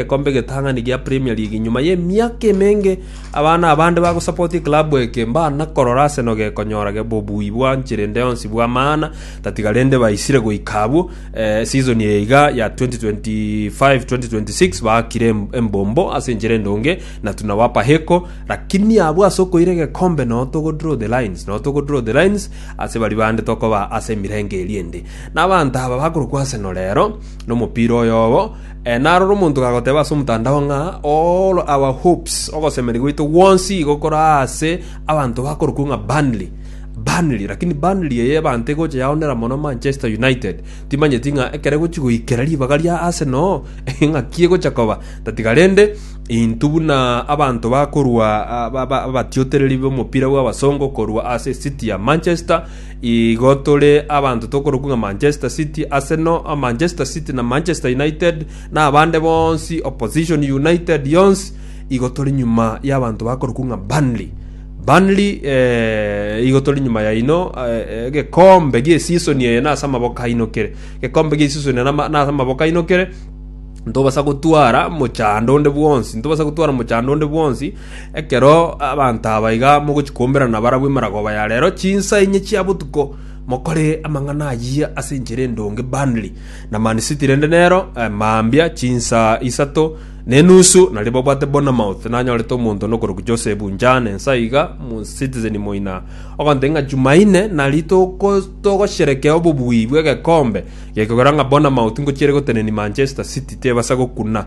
egekombe egetang'ani gia Premier League nyuma y'emiaka emenge abana abande bagosapoti ekilabu eke mbana korora ase nogekonyora bobui bwanche rende yonsi bw'amaana tatiga rende baisire goika abwo eh, season eye iga ya 2025-2026 baakire em- embombo ase enchera endonge na tunawapa heko lakini abwo ase okoira egekombe no togo draw the lines no togo draw the lines ase bari bande tokoba ase emirenge eri ende na abanto aba bakorokwa Arsenal rero nomopira oyobo Narora omonto gagoteba ase omotandao ng'a, All our hopes, ogosemeria gwaito gwonsi igo kore aase abanto bakorokwo ng'a Burnley, Burnley, rakini Burnley eye ebanto egocha yaonera mono Manchester United. Timanyeti ng'a ekero egochi goikera ribaga ria Arsenal ng'aki egocha koba, tatiga rende intwe buna abanto bakorwa abatiotereri b'omopira bw'abasongo korwa ase esiti ya Manchester, Igo tore abanto tokorokwa ng'a Manchester City, Arsenal, Manchester City na Manchester United, na abande bonsi, Opposition United yonsi, igo tore nyuma y'abanto bakorokwa ng'a Burnley. Burnley eh, igo tore nyuma yaino eh, eh, gekombe giesisoni eye nase amaboko aino kere gekombe giesisoni eye nama- nase amaboko aino kere ntobasa gotwara mochando onde bwonsi ntobasa gotwara mochando onde bwonsi Ekero abanto aba iga mogochia koomberana barabwo emeragoba ya reero chinsa inye chia botuko, mokore amang'ana ayio ase enchera endonge Burnley na Man City rende nero mambia chinsa isato ne enusu nario babwate Bournemouth nanyorete omonto one okorokwa Joseph Njane ense aiga mu Citizen moina ogoteba ng'a Jumaine nari toko togosherekea obobui bw'egekombe gekogera ng'a Bournemouth ngochiere gotenenia Manchester City tebasa gokuna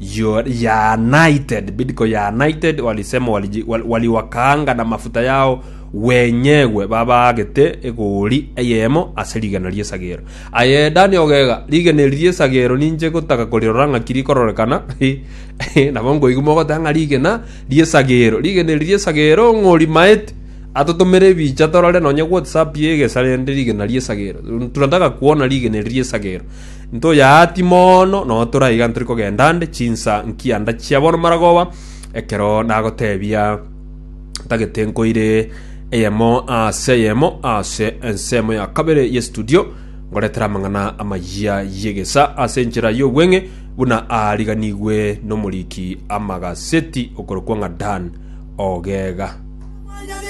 You are anointed, bidco you are anointed, walisema waliji- wal- waliwakaanga namafuta yao wenyegwe babaagete egoori eyemo ase rigena ri'esagero. Aye Dani ogega, rigena eri ri'esagero ninche gotaka korirora ng'aki rikororekana, nabo nkoigwa mogoteba ng'a rigena ri'esagero, rigena eri ri'esagero ng'orimaete atotomere ebicha torore nonye whatsapp y'egesare rende rigena ri'esagero. Tunataka kuona rigena eri ri'esagero. Ntoyaati mono, nonya tore aiga ntori kogenda nde chinsa nkianda chia bono maragoba, ekero nagoteebia ntagete nkoire eyemo ase eyemo ase ensemo ya kabere ye studio ngoretere amang'ana amayia y'egesa ase enchera y'obweng'e buna aariganigwe n'omoriki amagaseti okorokwa ng'a Dan Ogega.